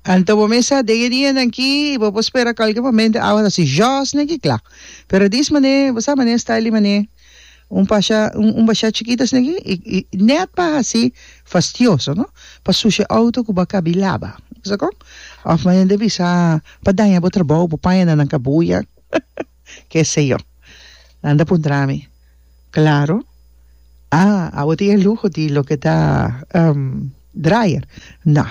Anto bo mesa den e dianan aki y bo por spera cualkier momento awa ta haci jos ne aki kla. Pero dis manera e bo sa manera e style di manera un pasha un basha chikito asina aki y y net pa haci fastioso no pa sushi e auto cu bo a cabi laba a bisa con? Of manera di bisa pa daña bo trabao bo paña na nan cabulla. ke se yo. Nan ta puntra mi, Klaro, a abo tin e luho di loke ta dryer? No,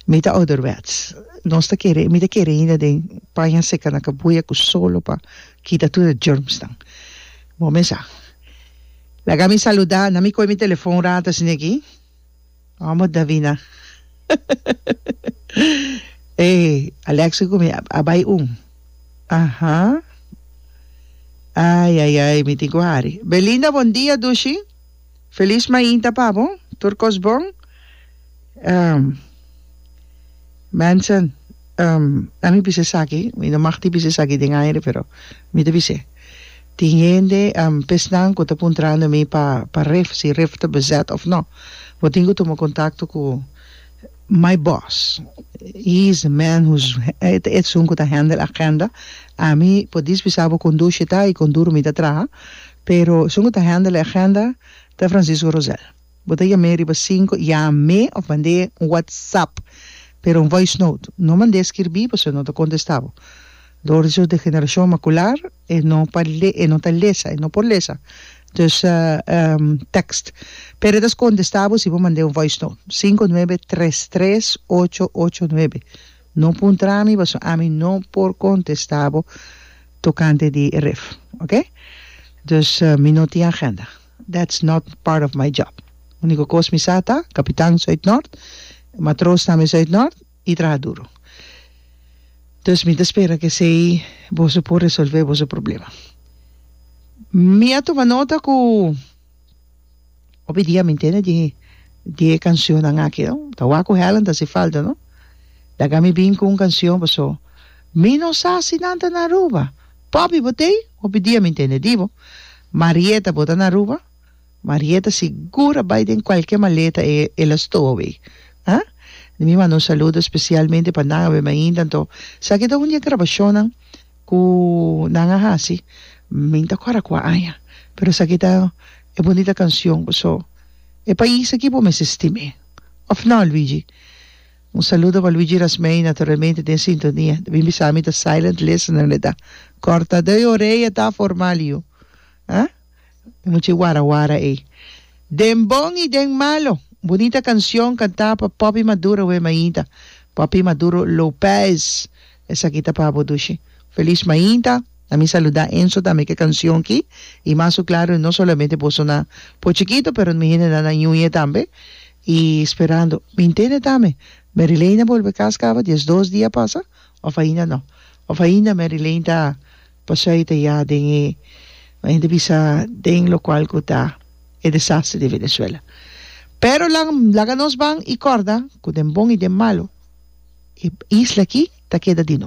mi ta ouderwets. Nos ta kere, mi ta kere ainda den paña seka na kabuya ku solo pa kita tur e germsnan. Bo me sa. Laga mi saluda, na mi kohe mi telefon rata, siña Gee. Amo Davina e Alexio cu mi a bay un aha ay ay ay mi tin cu hari Belinda bon dia dushi feliz mainta pa bo tur cos bon. Manson, Um, a mi bisa esaki, mi no mag di bisa esaki den aire, pero mi ta bis'é. Tin hende, um, pesnan ku ta puntrando mi pa, pa ref, si ref ta bezet òf no. Bo tin ku tuma kontakto ku my boss. He is the man who's, e ta esun ku ta handel agenda. Ami por dis bisa bo kon dushi ta i kon duru mi ta traha, pero esun ku ta handel e agenda ta Francisco Rosel. Bo ta yam'é riba sinku, yam'é òf mand'é un whatsapp, pero un voice note. No mand'é skirbí pasobra no ta kontestá bo. Dor di su degenerashon makular e no pa le e no ta lesa, e no por lesa. Dus text. Pero e ta skontestá bo si bo mand'é un voice note. Sinku nuebe tres tres ocho ocho nuebe. No puntra mi pasobra ami no por kontestá bo tokante di e ref. Oke? Dus mi no tin agenda. That's not part of my job. Unico cos mi sa ta, capitan so Uitnoord, matroos tambe so Uitnoord y traha duro. Dus mi ta spera cu esey boso por resolve boso problema. Mi a tuma nota cu hopi dia mi ntende di di e cancionnan aki, no? Ta wak cu Helen ta haci falta, no? Laga mi bin cu un cancion, pasobra mi no sa si nan ta na Aruba. Poppy bo tei hopi dia mi ntende di bo. Marieta bo ta na Aruba? Marieta sigur a bai den cualkier maleta e el a stowaway. Ha? Di mi manda un saludo especialmente pa nan awe mainta anto saki ta un di e grabacionnan cu nan a haci min ta cora cua aña pero saki ta e bonita cancion. So e pais aki bo mester stim'e of no Luigi? Un saludo pa Luigi Rasmey, naturalmente den sintonia. Ta bin bisa mi ta silent listener mi ta. Corta de oreya ta formal yu ha. E mucha wara wara ey. Den bon y den malo. Bunita cancion canta pa Poppy Maduro we mainta. Poppy Maduro Lopez. Esaki ta pa bo Dushi. Feliz mainta, a mi saluda Enzo tambe ke cancion ki y mas su claro no solamente boso na por chikito pero mi hende na na ñuñe tambe y sperando mi intende tambe Mary Lane a bolbe cas caba dies dos dia pasa of ainda no of ainda Mary Lane ta Pasai ta ya den e lo hende bisa den lokual ku ta e desastre di Venezuela. Pero la laga nos ban i kòrda ku den bon i den malu e isla aki ta keda di.